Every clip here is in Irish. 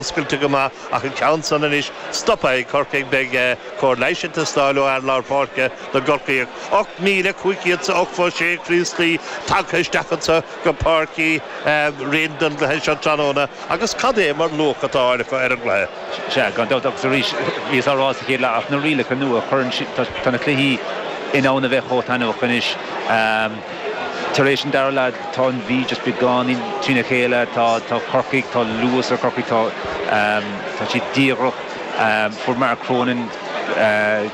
Oscailte go maith ach an ceann san anois stoptha ag Corcaigh. Beidh cóir leighis ag teastáil ó fhear lár páirce na gCorcaíoch. 8,500 is 86 Críostaí tagtha isteach anseo go Páirc Uí Rinn don gcluiche seo tráthnóna agus cad é mar luach atá á fháil acu ar an gcluiche. Sea, gan dabht agus arís bhíos á rá sa chéad leath ach na rialacha nua a chuireann siad, tá na cluichí in ann a bheith chomh taitneamhach anois. Tar éis an dara leath, tá an Mhí just beagáinín trína chéile. Tá Corcaigh, tá luas ar Chorcaigh, tá tá siad díoghrach. Fuair Mark Cronin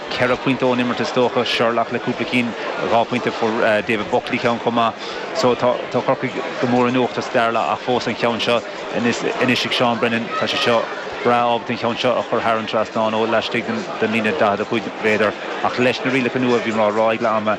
ceithre phointe ón imirt is dócha, Sherlock le cúpla cinn, dhá phointe, fuair David Buckley ceann chomh maith. So tá tá Corcaigh go mór in uachtar sa dara leath ach fós an cheann seo anois anois ag Seán Brennan, tá sé seo breá ábalta an cheann seo a chur thar an trasnán ó laistigh den líne 45 mhéadar. Ach leis na rialacha nua bhí mé á rá ag leath ama.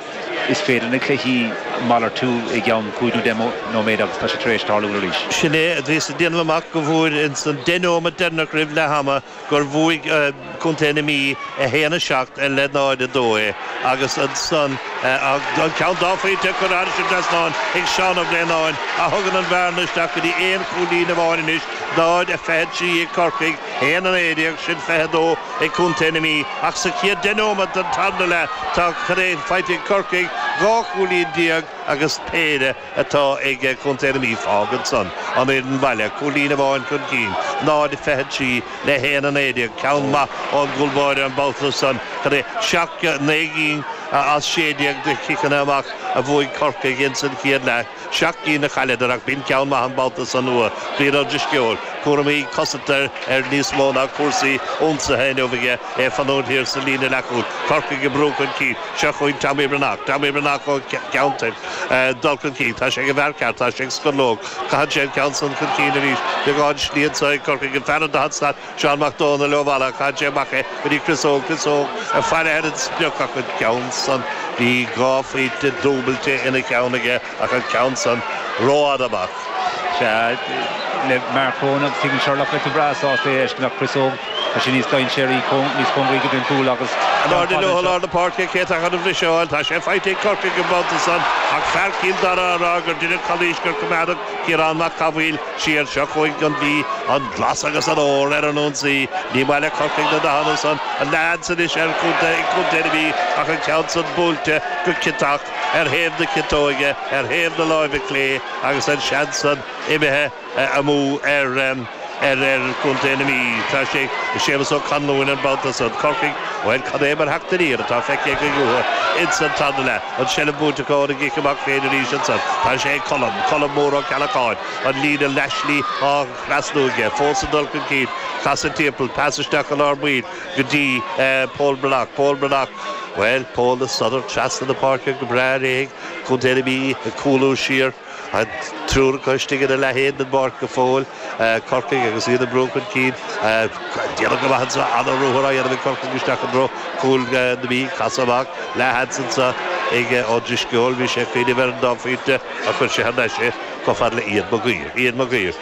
Is féidir na cluichí a mhalartú i gceann cúig nó deich nóiméad agus tá sé tar éis tarlú arís. Sin é a bhíos ag déanamh amach go bhfuair ins an deich neomat deireanach roimh leath ama gur bhuaigh Contae na Mí 1, 7 le 0, 2 é agus ansan an ceann dá phointe a cuireadh thairis an trasnán ag Seán Ó Braonáin a thugann an bhearna isteach go dtí aon chúilín amháin anois, 0, 23 ag Corcaigh, 1, 19 sin, 22. ag Contae na Mí ach sa chéad deich nóiméad den tarna leath tá cad é faighte ag Corcaigh, 12 cúilín agus péire atá ag Contae na Mí. Fágann san an fhoireann bhaile cúilín amháin chun cinn, 0 23 le 1 19. Ceann maith ón gcúl báire an babhta san, cad é seacht gcinn, naoi gcinn as sé déag de chiceanna amach a bhuaigh Corcaigh insan chéad leath. Seacht gcinn a chailleadar ach b'in ceann maith an babhta san uaidh. Brian Ó Drisceoil, cúraimí cosanta air níos mó ná cúrsaí ionsaithe inniu aige, é ag fanúint thiar sa líne leathchúil. Corcaigh ag brú chun cinn. Seo chugainn Tommy Breathnach. Tommy Breathnach ó Cheann Toirc ag dul chun cinn. Tá sé ag an bhfear ceart. Tá sé ag Scorlóg. Caitheann sé an ceann san chun cinn arís. Beagán slí anso ag Corcaigh. An fear ar an daichead slat. Seán Mac Dómhnaill ó Mhala chaith sé amach é go dtí Chris Óg Chris Óg ag faire ar an sprioc ach an ceann san bhí dhá phointe dúbailte ina cheann aige ach an ceann san ró fhada amach. Sea, le Mark Cronin agus Steven Sherlock bheadh tú breá sásta é a fheiscint ach Chris Óg tá sé níos dainséaraí, níos cóngaraí go dtí an cúl agus An ceann ard fada liomh i anseo. lár na páirce, cé atá chun an bhriseadh a fháil? Tá sé faighte ag Corcaigh an babhta san ach fear Chill Dara á rá gur deineadh calaois gur coimeádadh Ciarán Mac Cathmhaoil, Siar seo chugainn an Mhí an glas agus an ór ar an ionsaí. Ní maith le Corcaigh na dathanna san a leads anois ar Chontae na Mí ach an ceann san buailte go ciotach ar thaobh na ciotóige, ar thaobh na láimhe clé agus an seans san imithe amú ar ar fhear Chontae na Mí. Tá sé ag Séamus Ó Conluain an babhta so. Corcaigh, bhuel, cén mar theacht aniar atá feicthe againn uathu ins an tarna leath? An tseilbh buaite acu óna gcic amach féin arís ansan. Tá sé ag Colm, Colm Mór Ó Ceallacháin, an líne leathshlí á thrasnú aige. Fós ag dul chun cinn. Casadh timpeall, pas isteach i lár baill go dtí Pól Breathnach. Pól Breathnach, bhuel, Pól ag sodar trasna na páirce go breá réidh. Contae na Mí ag cúlú siar. An triúr acu istigh ina leath féin den bpáirc go fóill, Corcaigh agus iad ag brú chun cinn. Déanta go maith ansan, an-ruathar á dhéanamh ag Corcaigh isteach i dtreo chúl na Mí. Casadh amach leis ansan ag Ó Drisceoil. Bhí sé ag cuimhneamh ar an dá phointe ach chuir sé thar n-ais é chomh fada le Ian Mag Uidhir. Ian Mag Uidhir.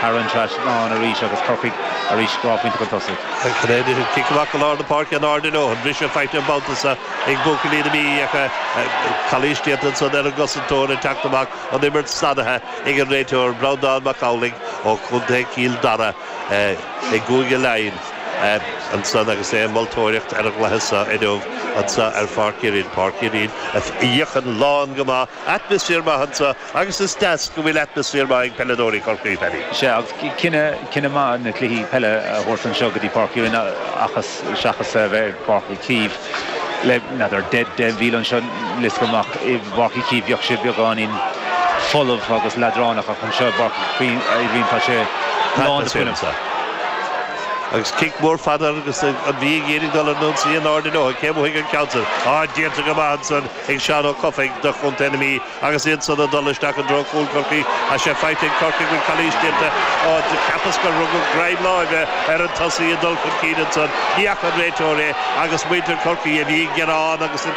thar an trasnán arís agus Corcaigh arís dhá phointe chun tosaigh. Cic amach go lár na páirce in airde leo. An briseadh faighte an babhta seo ag buachaillí na Mí ach calaois déanta ansan ar an gcosantóir ag teacht amach. An imirt sannaithe ag an réiteoir, Breandán Mac Amhlaigh ó chontae Chill Dara i gCúige Laighin ansan agus é ag moltóireacht ar an gcluiche seo inniu anso ar Pháirc Uí Rinn. Páirc Uí Rinn a fhéachann lán go maith. Atmaisféar maith anso. Agus is deas go bhfuil atmaisféar maith ag peileadóirí Chorcaí, Paddy. Is ea, agus cinneadh maith na cluichí peile a thabhairt anseo go dtí Páirc Uí Rinn seachas a bheith ar Pháirc Uí Chaoimh. Le, n'fheadar, deich míle anseo, níl 'fhios agam, i bPáirc Uí Chaoimh bheadh sé beagáinín folamh agus leadránach ach anseo i bPáirc Uí Rinn tá sé lán de fhuinneamh. Agus cic mór fada agus an Mhí ag iarraidh dul ar an ionsaí in airde leo. Cé a bhuafaidh an ceann sin? Á, déanta go maith ansan ag Seán Ó Cofaigh do chontae na Mí. Agus iad san ag dul isteach i dtreo chúl Chorcaí, ach é faighte ag Corcaigh bhfuil calaois déanta ó cheapas gur rugadh greim láimhe ar an tosaí ag dul chun cinn ansan, ní fhaca an réiteoir é agus muintir Chorcaí a bhí ag gearán agus ag.